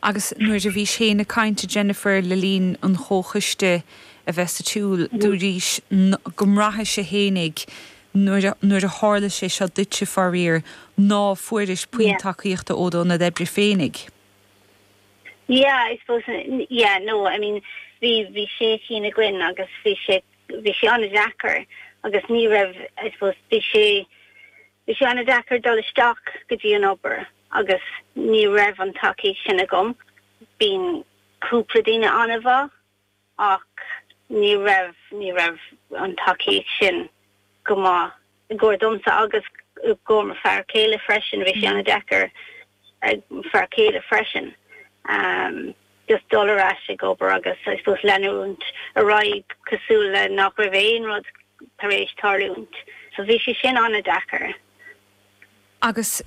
Agus nuair a bhís-se ag caint, a Jennifer, le linn an chomhchoiste a bheith ar siúl, dúraís go mbraithis-se fhéinig, nuair a tharla sé seo duitse, faraor, ná fuairis puinn tacaíochta ó do ionad oibre féinig. Yeah, I suppose, yeah, no, I mean, bhí, bhí sé cinn againn agus bhí sé, bhí sé an-deacair agus ní raibh, I suppose, bhí sé, bhí sé an-deacair dul isteach go dtí an obair. agus ní raibh an tacaíocht sin agam. Bhí cúpla daoine an-mhaith ach ní raibh, ní raibh an tacaíocht sin go maith i gcomhair domsa agus i gcomhair mo fear céile freisin. Bhí sé an-deacair ag mo fear céile freisin just dul ar ais ag obair agus I suppose leanúint ar aghaidh cosúil le nach raibh aon rud tar éis tarlúint. So bhí sé sin an-deacair Agus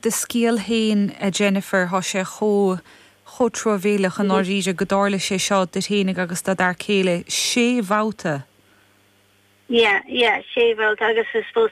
do scéal féin, a Jennifer, thá sé chomh, chomh truamhéileach i ndáiríre gur tharla sé seo duit fhéinig agus do d'fhear céile sé bhabhta! Yeah, yeah, sé bhabhta agus I suppose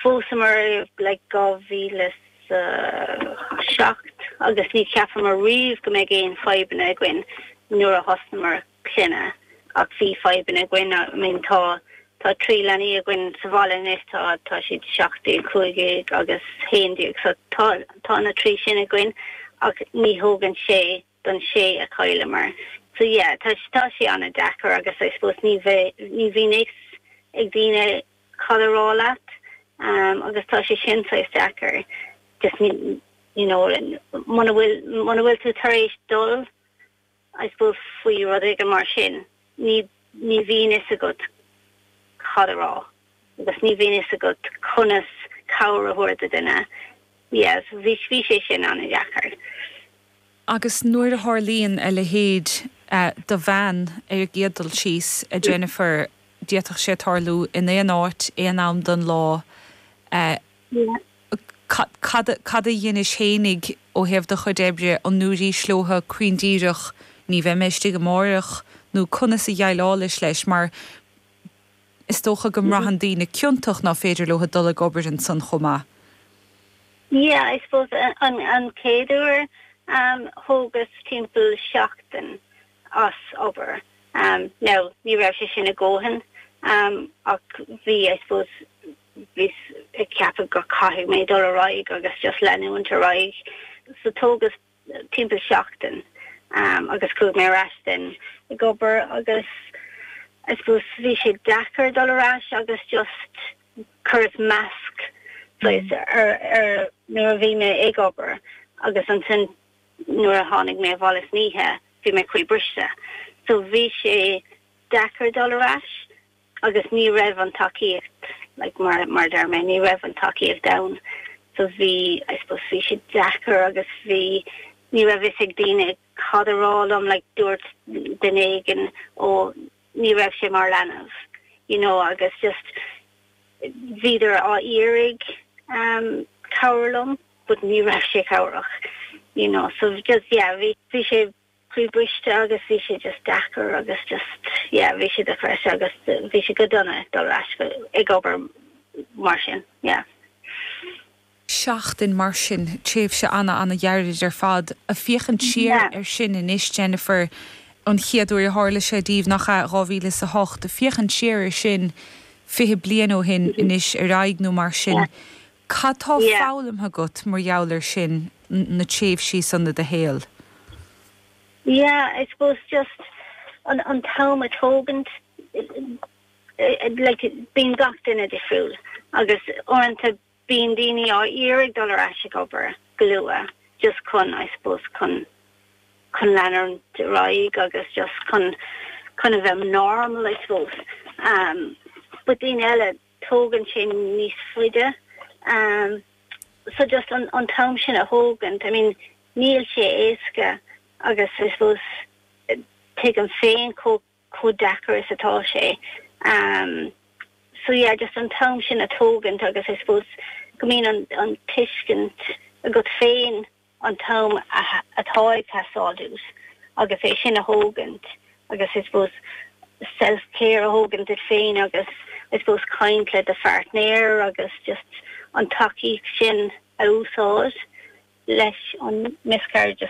phósamar i dhá mhíle is a seacht agus ní cheapamar riamh go mbeidh aon fadhbanna againn nuair a thosnamar. clainne. Ach bhí fadhbanna againn. I mean, tá, tá trí leanaí againn sa bhaile anois, tá, tá siad seacht déag, cúig dhéag agus haon déag. So tá, tá na trí sin againn ach ní thógann sé don sé a chailleamar. So yeah, tá, tá sé an-deacair agus I suppose ní, ní bhíonn fhios ag daoine cad a rá leat um agus tá sé sin saghas deacair. Just ní, you know, muna bhfuil, muna bhfuil tú tar éis dul. I suppose faoi rud éigin mar sin, ní, ní bhíonn fhios agat cad a rá agus ní bhíonn fhios agat conas cabhair a thabhairt do duine. Yeah, bhí, bhí sé sin an-deacair. Agus nuair a tharlaíonn a leithéid do bhean ar gcéad dul síos, a Jennifer, d'fhéadfadh sé tarlú in aon áit, aon am den lá. Cad, cad a dheinis fhéinig ó thaobh do chuid oibre, an ndúirís leotha glan díreach ní bheidh mé istigh amáireach nó conas a dheighleálais leis mar is dócha go mbraitheann daoine ciontach ná féidir leotha dul ag obair ansan chomh maith? Yeah, I suppose an, an chéad uair thógas timpeall seachtain as obair. Now ní raibh sé sin a dhóthain ach bhí, I suppose, bhíos ag ceapadh go gcaithfidh mé dul ar aghaidh agus just leanúint ar aghaidh so tógas timpeall seachtain agus chuaigh mé ar ais then ag obair agus I suppose bhí sé deacair dul ar ais agus just chuireas masc saghas ar ar nuair a bhí mé ag obair agus ansin nuair a tháinig mé abhaile san oíche bhí mé croíbhriste so bhí sé deacair dul ar ais agus ní raibh an tacaíocht, like, mar, mar a deir mé, ní raibh an tacaíocht ann. So bhí, I suppose, bhí sé deacair agus bhí, ní raibh fhios ag daoine cad a rá liom, like, dúirt duine éigin, ó, ní raibh sé mar leanbh, you know, agus just, bhíodar á iarraidh, um, cabhrú liom, but ní raibh sé cabhrach, you know, so just, yeah, bhí, bhí sé croíbhriste agus bhí sé just deacair agus just yeah bhí sé depressed agus bhí sé deacair dul ar ais go ag obair mar sin yeah. seachtain mar sin tréimhse ana ana ghairid ar fad ag féachaint siar yeah. ar sin anois Jennifer an chéad uair a tharla sé daoibh nach ea dhá mhíle is a hocht féachaint siar ar sin fiche bliain ó shin anois ar ndóigh nó mar sin yeah. Cad tá foghlamtha agat mar gheall air sin, na tréimhsí san i do shaol? Yeah, I suppose just an t-am a thógaint, like bíonn gach duine difriúil agus uaireanta bíonn daoine á iarraidh dul ar ais ag obair go luath just chun, I suppose, chun chun leanúint ar aghaidh agus just chun chun a bheith normal, I suppose. But daoine eile. tógann sé níos faide so just an t-am sin a thógaint I mean níl sé éasca agus I suppose tuigim féin chomh deacair is atá sé so yeah just an t-am sin a thógaint agus I suppose go mbíonn an tuiscint agat féin an t-am atá ag teastáil uait agus é sin a thógaint agus I suppose self care a thógaint duit féin agus I suppose caint le do phairtnéir agus just an tacaíocht sin a úsáid leis an miscarriage.